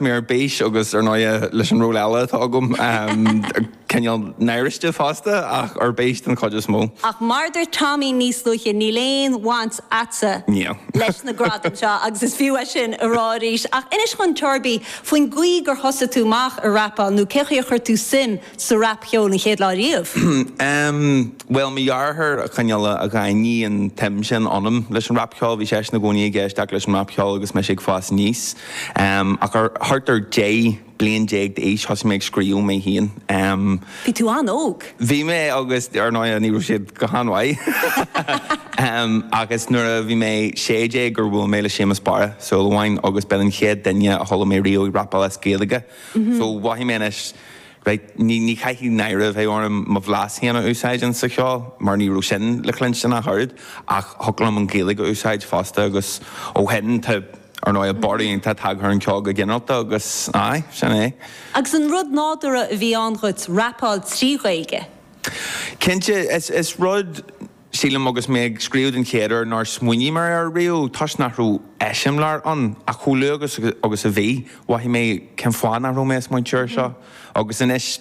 mé ar bís agus, ar ndóighe, leis an ról eile atá agam, cineál náirithe fosta, ach ar bís den chuid is mó. Ach mar a dúirt Tommy níos luaithe, níl aon bhaint a'tsa leis na gradaim seo agus is fiú é sin a rá arís. Ach inis dhúinn Torby faoin gcaoi gur thosaigh tú amach ag rapáil nó cén chaoi a chuir tú suim sa rapcheol an chéad lá riamh? Em, bhuel, mo dheartháir a, cineál, a, a dhaingnigh an tsuim sin ionam leis an rapcheol, bhí seisean i gcónaí ag éisteacht leis an rapcheol agus mise ag fás aníos. Em, ach ar, thart ar dhá bhliain déag d'aois thosaigh mé ag scríobh mé féin. Em. Bhí tú an-óg. Bhí mé agus ar ndóigh ní raibh siad go han-mhaith. Em, agus nuair a bhí mé sé déag gur bhuail mé le Séamus Barra Ó Súilleabháin, agus b'in an chéad duine a chuala mé riamh ag rapáil as Gaeilge. So, mhothaigh mé anois, Raight, ní chaithfidh náire a bheith orm mo bhlas féin a úsáid ins sa cheol, mar ní raibh sin le cluinstin ach oiread, ach thiocfadh liom an Ghaeilge a úsáid fosta agus ó shin tá, ar ndóigh, borradh iontach tagtha ar an cheol go ginearalta agus aye, sin é. Agus an rud nádúrtha a bhí ann dhuit rapáil trí Ghaeilge? Cinnte, is rud Sílim agus mé ag scríobh den chéad uair nár smaoinigh mé air riamh toisc nach raibh eiseamláir ann ach chomh luath agus a bhí, mhothaigh mé cén fáth nach raibh mé ag smaointiú air seo. Agus anois,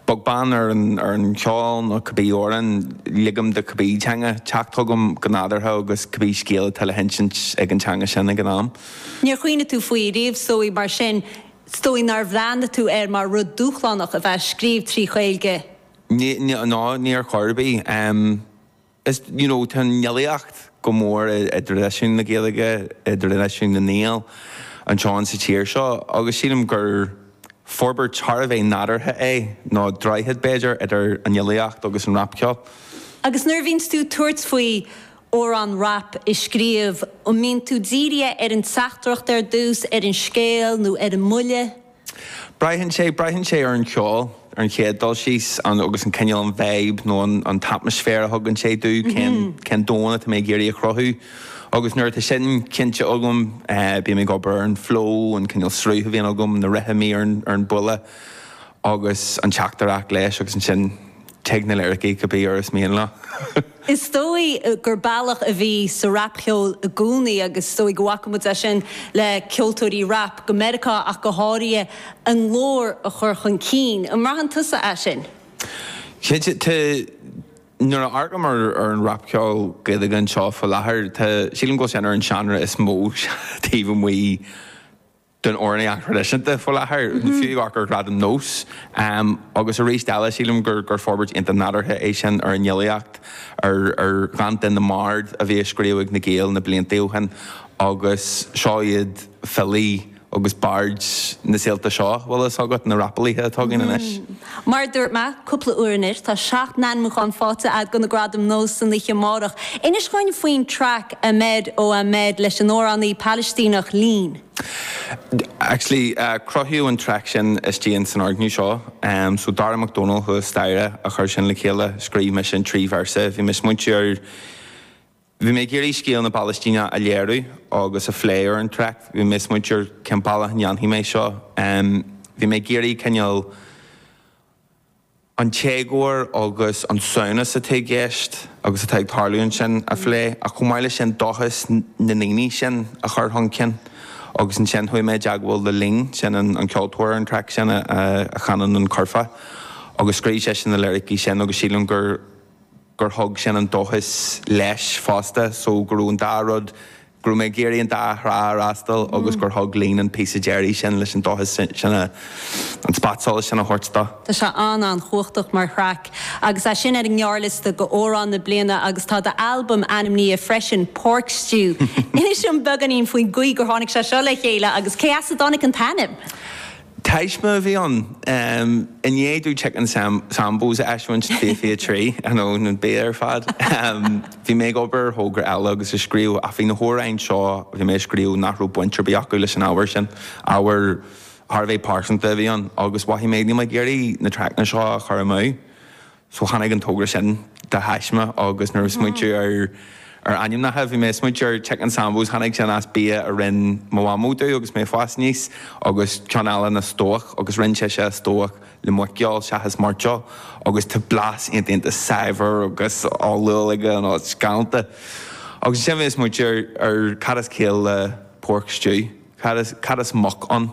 beag beann ar an cheol nó cibé amhrán ligim do cibé teanga teacht chugam go nádúrtha agus cibé scéal atá le hinsint ag an teanga sin ag an am. Níor chuimhnigh tú faoi riamh is dóigh, mar sin is dóigh nár bhreathnaigh tú air mar rud dúshlánach a bheith ag scríobh trí Ghaeilge? Ná ní ar chor ar bith. Is you know tá an fhilíocht go mór i dtraidisiún na Gaeilge, i dtraidisiún na nGael anseo in sa tír seo agus sílim gur forbairt thar a bheith nádúrtha é, nó droichead b'fhéidir idir an fhilíocht agus an rapcheol. Agus nuair a bhíonns tú tabhairt faoi amhrán rap a scríobh, an mbíonn tú dírithe ar an teachtaireacht ar dtús, ar an scéal nó ar an mbuille? Braitheann sé, braitheann sé ar an cheol, ar an chéad dul síos, an, agus an cineál, an vibe nó an, an t-atmaisféar a thugann sé domh, cén, cén domhan atá mé ag iarraidh a chruthú. Agus nuair atá sin cinnte agam, eh, bím ag obair ar an flow, an cineál sruth a bhíonn agam, na rithimí ar an, ar an bhuille agus an teachtaireacht leis agus ansin Tig na liricí cibé uair is mian leo. Is dóigh gur bealach a bhí sa rapcheol i gcónaí, agus is dóigh go bhfaca muid é sin le ceoltóirí rap, go Meiriceá ach go háirithe, a nglór a chur chun cinn. An mbraitheann tusa é sin? Cinnte. Tá, nuair a amharcaim ar an rapcheol Gaeilge anseo faoi láthair, tá, sílim go bhfuil sé ar an seánra is mó taobh amuigh, den amhránaíocht thraidisiúnta faoi láthair, fiú amharc ar Gradaim Nós. Agus arís eile, sílim gur forbairt iontach nádúrtha é sin ar an fhilíocht, ar dhánta na mbard a bhí á scríobh ag na Gaeil na blianta ó shin. Agus seo iad filí agus baird na saolta seo, bhfuil a fhios agat, na rapalaithe atá againn anois. Mar a dúirt mé cúpla uair anois, tá seacht n-ainmiúchán faighte agat do na Gradaim Nós san oíche amárach. Inis dhúinn faoin traic Ahmed Oh Ahmed leis an amhránaí Palaistíneach Leen. Actually, cruthaíodh an traic sin istigh ins an fhoirgneamh seo. So, Darragh Mac Dónaill thuas staighre a chuir sin le chéile. Scríobh mise na trí véarsa. Bhí mé ag smaointiú ar. Bhí mé ag iarraidh scéal na bPalaistíneach a léiriú agus a phlé ar an traic. Bhí mé ag smaointiú ar cén bealach a ndéanfainn é seo. Bhí mé ag iarraidh cineál an t-éagóir agus an samhnas atá i gceist agus atá ag tarlú ansin a phlé ach chomh maith leis sin dóchas na ndaoine sin a chur chun cinn. Agus ansin chuaigh mé i dteagmháil le Leen, sin an ceoltóir ar an traic sin a chanann an curfá agus scríobh sise na liricí sin agus sílim gur gur thug sin an dóchas leis fosta so go raibh an dá rud, go raibh mé ag iarraidh an dá thrá a fhreastal agus gur thug Leen an píosa deiridh sin leis an dóchas sin a, an spotsolas sin a thabhairt dó. Tá sé an-an-chumhachtach mar thraic agus é sin ar an ngearrliosta do Amhrán na Bliana agus tá d'albam ainmnithe freisin, Pork Stew. Inis dom beagáinín faoin gcaoi gur tháinig sé seo le chéile agus cé as a dtáinig an t-ainm? Taisme a bhí ann. I ndiaidh domh Chicken Sambos a eisiúint, fiche fiche trí, nó nó bia ar fad. Bhí mé ag obair ar thogra eile agus ag scríobh, ach bhí na hamhráin seo a bhí mé a scríobh nach raibh baint ar bith acu leis an ábhar sin. Ábhar thar a bheith pearsanta a bhí ann, agus mhothaigh mé, níl mé ag iarraidh na traiceanna seo a chur amú. So tháinig an togra sin de thaisme agus nuair a smaointiú ar ar ainmneacha, bhí mé ag smaointiú ar Chicken Sambos, tháinig sin as bia a rinn mo mhamó domh agus mé ag fás aníos, agus ceann eile ná stobhach agus rinn sise a stobhach le muiceoil seachas mairteoil agus tá blas iontach iontach saibhir agus olúil aige, you know, it's galánta. Agus ansin bhí mé ag smaointiú ar cad is ciall le Pork Stew, cad is cad is muc ann?